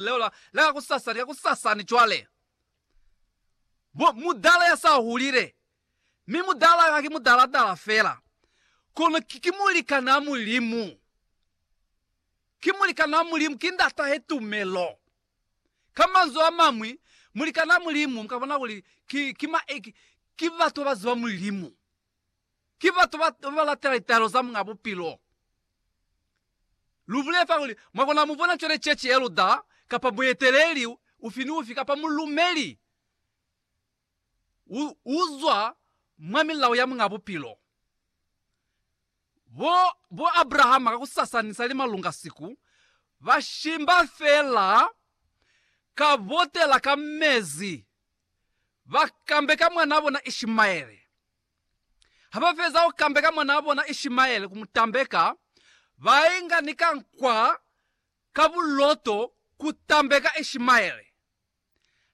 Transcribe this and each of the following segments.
Leo la, la kakusasa, lika kusasani cwale. Mu, mudala ya sa hulile. Mi mudala ka ki mudala-dala fela. Kono ki, ki mulikanaa Mulimu. Ki mulikanaa Mulimu, ki ndata he tumelo. Ka manzwi a mañwi, mulikanaa Mulimu, mu ka bona kuli ki, ki ma, ki, ki batu ba ba ziba Mulimu. Ki batu ba ba lata litaelo za Muñ'a Bupilo. Lu bulela fa kuli, Mwa kona mu bona cwale cece ya luda, kapa mueteleli ufi ni ufi, kapa mulumeli u, u zwa mwa milao ya Muñ'a Bupilo. Bo, bo Abrahama ka ku sasanisa ni malunga siku, ba shimba fela ka botela ka mezi, ba kambeka mwanaa bona Ishimaele. Habafeza kukambeka mwanaa bona Ishimaele kumutambeka, bainga ni kankwa ka buloto kutambeka Ishimaele.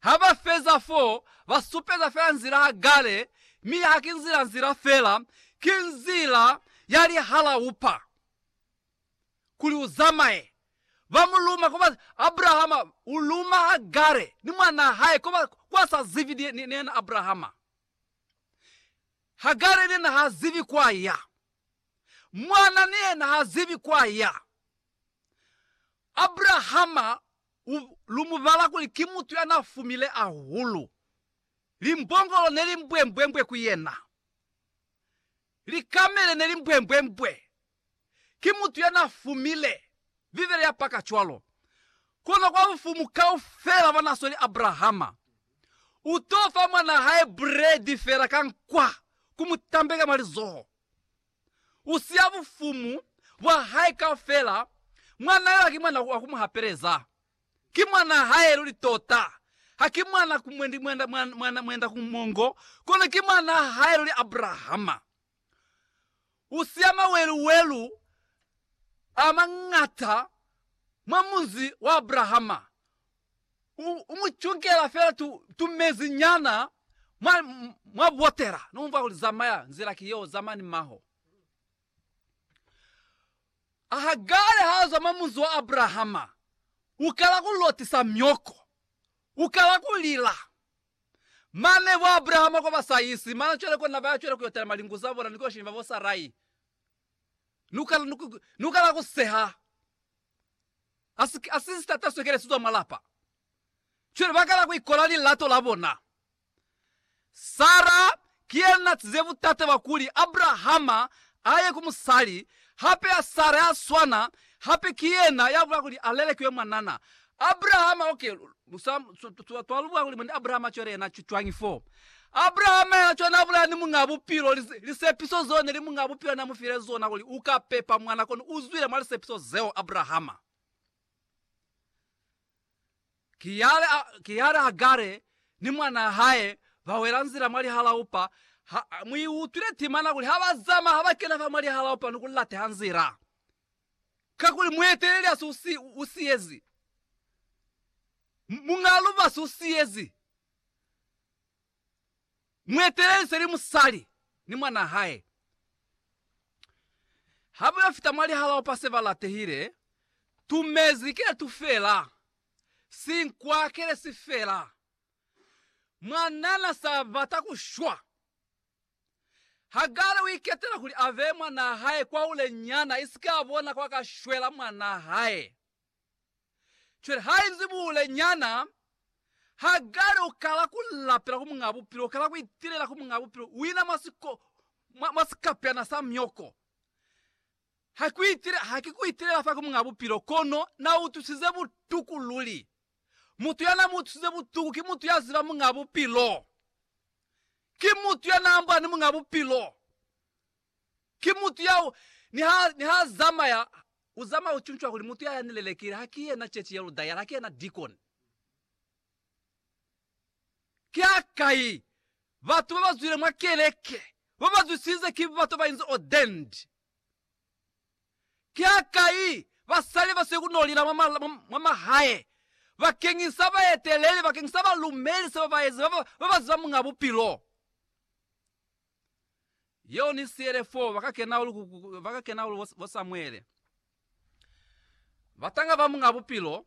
Habafeza fo, basupeza fela nzila Hagare, mi haki nzila nzila fela, ki nzila ya lihalaupa kuli uzamaye. Bamuluma koba Abrahama uluma Hagare ni mwanaa hae koba kwasa zibi ni yena Abrahama. Hagare yena ha zibi kwa ya. Mwana ni yena ha zibi kwa ya. Abrahama u, lu mu bala kuli ki mutu ya na fumile ahulu. Limbongolo ne li mbwembwembwe ku yena. Likamele ne li mbwembwembwe ki mutu ya n'a fumile Bibele ya paka cwalo. Kono kwa bufumu kaufela bwa n'a sweli Abrahama, u t'o fa mwan'a hae buredi fela ka nkwa ku mu tambeka mwa lizoho. U siya bufumu bwa hae kaufela, mwan'a yo haki mwan'a wa ku mu hapeleza. Ki mwan'a hae luli tota, haki mwan'a ku mwendi, mwan'a mwenda ku mongo, kono ki mwan'a hae luli Abrahama. u siya mawelu-welu a mañata mwa munzi wa Abrahama, u, u mu cungela fela tu, tumezi nyana mwa, mwa botela. No mumvwa kuli, Zamaya, nzila ki yeo, zama ni maho. A Hagare ha zwa mwa munzi wa Abrahama, u kala ku lotisa myoko, u kala ku lila. Mane bo Abrahama kwa ba sa isi mana cwale kona baya cwale kuyo talima lingu za bona ni kuyo shimba bo Sarai. Ni ukala ku seha. A si sitata swekele sizwa mwa lapa. Cwale ba kala ku ikola lilato la bona. Sarah Ki yena natize butate bwa kuli Abrahama aye ku musali hape ya Sara ya swana, hape ki yena ya bula kuli alelekiwe mwanana. Abrahama, ok, twa lu bula kuli mwendi Abrahama cwale yena cwañi fo? Abrahama yena cwale na bulaya ni Muñaa Bupilo, lisepiso zeo neli Muñaa Bupilo na mufile zona kuli uka pepa mwana, kono uzwile mwa lisepiso zeo, Abrahama. Ki yale Hagare ni mwanaa hae ba wela nzila mwa lihalaupa. Ha mu i utwile timana kuli ha ba zama, ha ba kena fa mwa lihalaupa ni ku lateha nzila. Kakuli mueteleli asi u siyezi, muñaa lubasi u siyezi. Muetelelize ni musali ni mwanaa hae ha ba yo fita mwa lihalaopa se ba latehile. Tu mezi ki letu fela, sinkwa ki le si fela. Mwanana sa bata ku shwa. Hagare u iketela kuli a beye mwanaa hae kwa hule nyana, isike a bona kwa ka shwela mwanaa hae. Cwale hainzi buule nyana, ha kale u kala ku lapela ku Muñaa Bupilo, u kala ku itilela ku Muñaa Bupilo wina mwa siko, mwa, mwa sikapeana sa myoko. Ha ku itile, ha ki ku itilela fa ku Muñaa Bupilo, kono Na utwisize butuku luli. Mutu ya na mu utwisize butuku ki mutu ya ziba Muñaa Bupilo. Ki mutu ya na ambola ni Muñaa Bupilo. Ki mutu ya u, niha, niha a zamaya, u zamaya u cuncwa kuli mutu ya ya ni lelekile ha ki yena Chechi ya Ludayala, ha ki yena Deacon. Ki hakai batu ba ba zwile mwa keleke ba ba zwisize ki batu ba inzi ordained? Ki hakai basali ba siyo ku no lila mwa, ma, mwa, mwa mahae bakeñisa baeteleli, bakeñisa balumeli, se ba ba ezi, ba ba, ba ba ziba Muñ'a Bupilo? yeo ni siele foo bakakenaulu bo Samuele, batanga ba Muñ'a Bupilo.